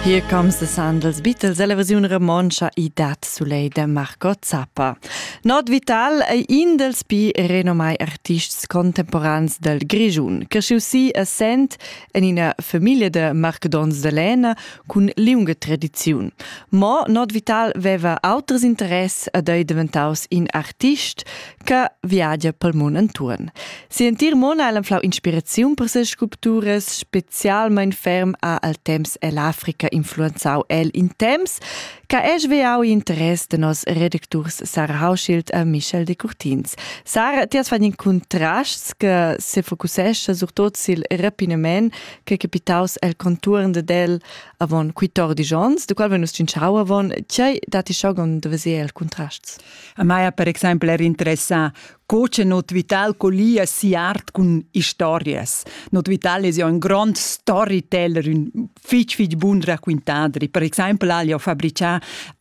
Here comes the Sandals Beatles è la versiun romontscha i dat sulei de Marco Zappa. Not Vital ei in dels pi renomai artists contemporans del Grigiun, che schiu si essent en ina famiglia de marcedons de Lena cun liunga tradiziun. Mo Not Vital veva auters interess ed ei diventaus in artist, che viagia pel mund intuorn. Sientir mon ha flau inspiraziun per ses sculpturas, specialmein ferm ha al temps ell'Africa influenzau el in temps che es veau interess de nos redacturs Sarah Hauschild e Michel de Curtins. Sarah, ti has fatto in contrasts che se focussescha surtot sil rapinament che capitaus el conturn de del avon 14 ons, de qual venus cinciau avon, tgei dati schogon de vesier el contrasts? A mai ha per exempel er interessà co che Not Vital collia sia art cun historias. Not Vital es jo ün grond storyteller, ün fich fich bun raquintadri. Per exempel ha el jo fabrichà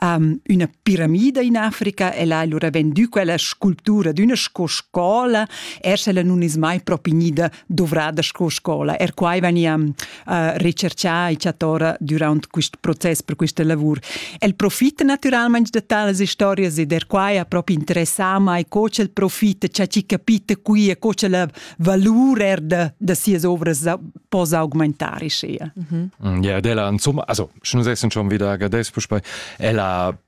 um, üna piramida in Africa e l'ha lura vendü quella sculptura d'üna sco scola, er se ella nun es mai propi gnida duvrada sco scola. Er quai vegnia uh, recerchà e chatora durant quest process per questa lavur. El profita naturalmente da tales historias ed er quai ha proprio interessà mai co ch'el profita, cha chi capita qui e co che la valur er da, da sias ovras po augmentare sia. Mm -hmm. Ja, ed ella, insomma, also, schon sechsen schon wieder, gell, Ella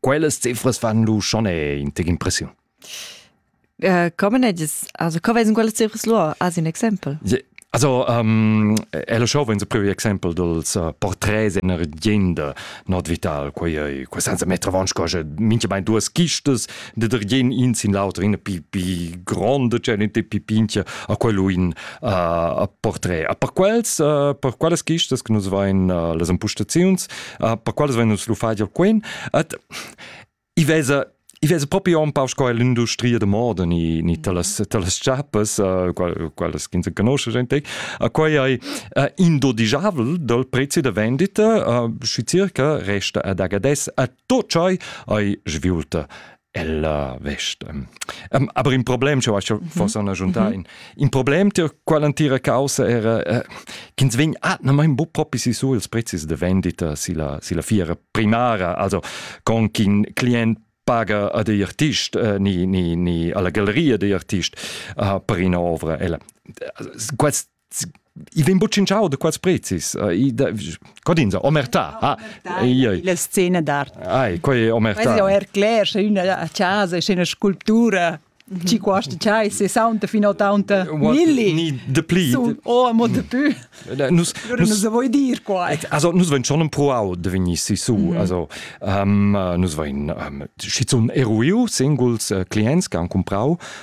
Quellas cifras fan lu schon in tec impressiun. Uh, come edis? Also, co vesen quelle cifres lur as un exempel? Yeah. Also um, è lo show venzo previo exempel dels uh, porträts in argenda not vital quei ei quei senza metra vonsch cosa minche bein duas kistas de der gen in sin l'auto in pi pi gronde c'è in pi pintia a quello in uh, a portrait a per quels uh, per quelles kistas che nus vain uh, las ampustaziuns uh, per quals vein nus lu fatg quen et i vesa i vesa propi on pau sco l'industria de moda ni ni talas talas chapas uh, quelles che se conosce gente a quei ei uh, indodigiabel dal prezzi de vendita uh, schi circa resta ad agades a tot chai ai sviulta Ella vest. Um, aber in problem, che was fosse una giunta in in problem tür quell'antira causa era äh, ch'ins vegn ah na mein bu propi si su ils prezis de vendita si la si la fiera primara also con ch'in client paga a de artist äh, ni ni ni alla galleria de artist uh, per ina ovra ella quest i vegn buc cinciau da quels prezis codins omerta la scena d'art ai quei omerta quella er cler sche una casa sche una sculptura ci costa c'hai 60 fino 80 milli ni de pli oh mo de più nus nus vuoi dir qua also nus ven schon proau de veni si su also nus vein schizun eruiu singuls clients che han comprau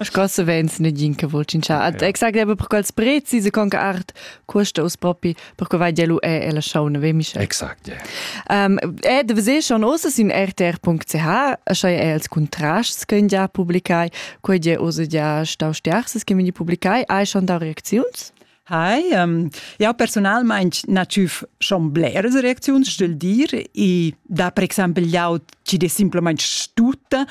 Sco savens negin che vul tschintschar ad exact per quels prezis e conca art custa us propi per co vai lu è e la schauna ve Michel. Exact. Yeah. Um, e de vese schon osa sin rtr.ch schai è els contrasts che ja publicai quei je osa ja stau sterses che veni publicai hai schon da reacziuns? Hi, um, jau personalmain na tschüf schon bleras reacziuns, stögl dir, e da per exempel jau ci de simplesmente stutta,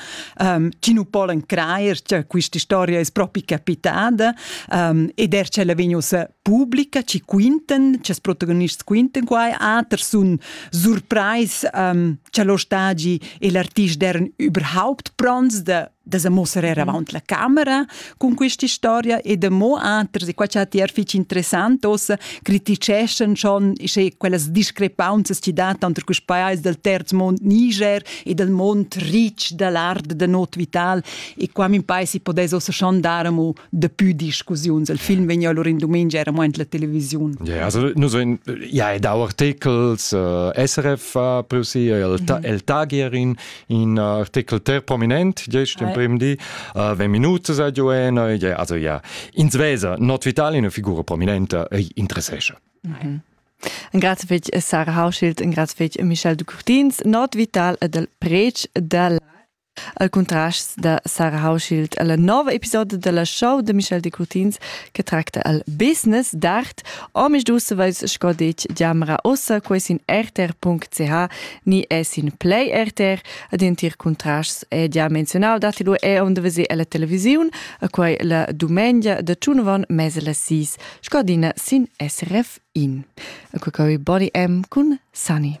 um, ci nu polen crajer che questa storia es propi capitada, um, ed er c'ella vegn ussa pubblica, ci quinten, ces protagonists quinten quai, ater sun surprais um, che lo stagi e l'artist deren überhaupt prons de da sa mussar avant la camera cun questa storia e da mo anters e qua c'ha ti er fitg interessant ossa criticeschan schon sche quellas discrepanzas ti dat tanter quest pajais dal terz mond Niger e dal mond rich da l'art da not vital e qua min pais si podais ossa schon dar amo Dapi discussiuns el film vegn allora in dumengia era mo la televisiun. Yeah, also nus vein ja e dau articles uh, SRF ha preusi el, ta, mhm. el tagier in in uh, artikel ter prominent gest in prim di uh, ve minutas a giuena yeah, also ja in Svesa not vitale una figura prominente interessesce. Mhm. En grazie fetg Sarah Hauschild, en grazie fetg Michel de Courtins, not vital ed el prec della al contrast da Sarah Hauschild alla nova episoda della show de Michel de Curtins che tracta al business d'art omis dussevais sco detg diamra ossa ques in rtr.ch ni es in play rtr ad entir contrasts è gia menzionau datilu è onde vese alla televisiun a quai la dumengia de tschunvan mese la sis sco dina sin SRF in a quai Bonnie M cun Sunny